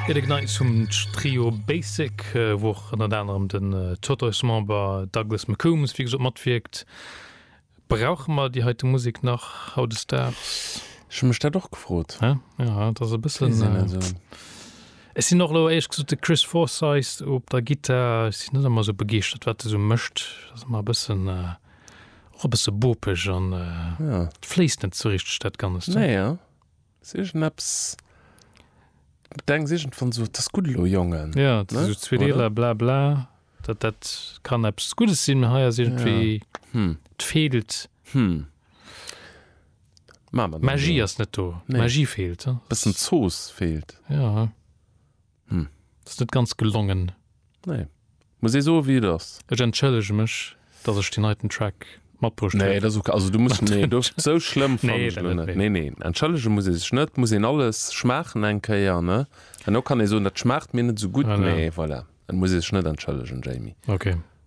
Ierde Gneis vum Trio Basic, wou och ënnert anerem den Totoismember Douglas McCombs, wéi gesot, matwierkt. Brauche mer déi heite Musek nach hautdesdaags? Ech hu mech dat och gefrot. Ja, et ass e bëssen. Ech sinn och elo éierlech gesot de Chris Forsyth op der Gittar, ech sinn net ëmmer esou begeeschtert, wat e sou mécht. Et ass ëmmer e bëssen, och e bësse bopeg an et fléisst net sou richteg dat Ganzt. Ass iergendepps, d'Bedeng ass iergendwann sou, 't ass gutt elo, Jongen. Jo, et sinn sou zwee Deeler, bla bla, dat dat kann eppes Guddes sinn, mee hei ass iergendwéi, 't feelt. D'Magie ass net do, d'Magie feelt. Bëssen Zooss feelt. Hm. Dat ass net ganz gelongen. Nee. Muss ee soe wéi et ass. Ech entschëllege mech, datt ech deen heiten Track matbruecht hunn. Nee, dat ass ok. Also du muss, nee, do, sou schlëmm fannen Nee, ech dat elo net, net. nee. Nee, nee, entschëllege muss ee sech net. Muss een alles schmaachen eng Kéier, ne? An elo kann ee soen, dat schmaacht mir net esou gutt, Voilà. mee voilà, et muss ee sech net entschëllegen, Jamie. Ok.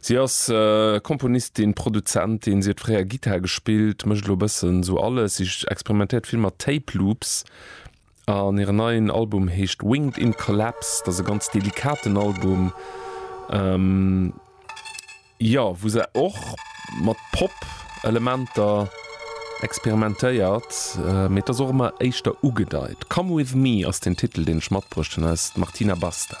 Si ass Komponistin, Produzentin, si huet fréier Gittar gespillt, mécht elo e bëssen esou alles. Si experimentéiert vill mat Tape Loops an hiren neien Album heescht Winged in Collapse. Dat ass e ganz delikaten Album, jo, wou se och mat Pop-Elementer experimentéiert, mee et ass och ëmmer éischter ugedeit. Come with me ass den Titel, deen ech matbruecht hunn, eis d'Martina Basta.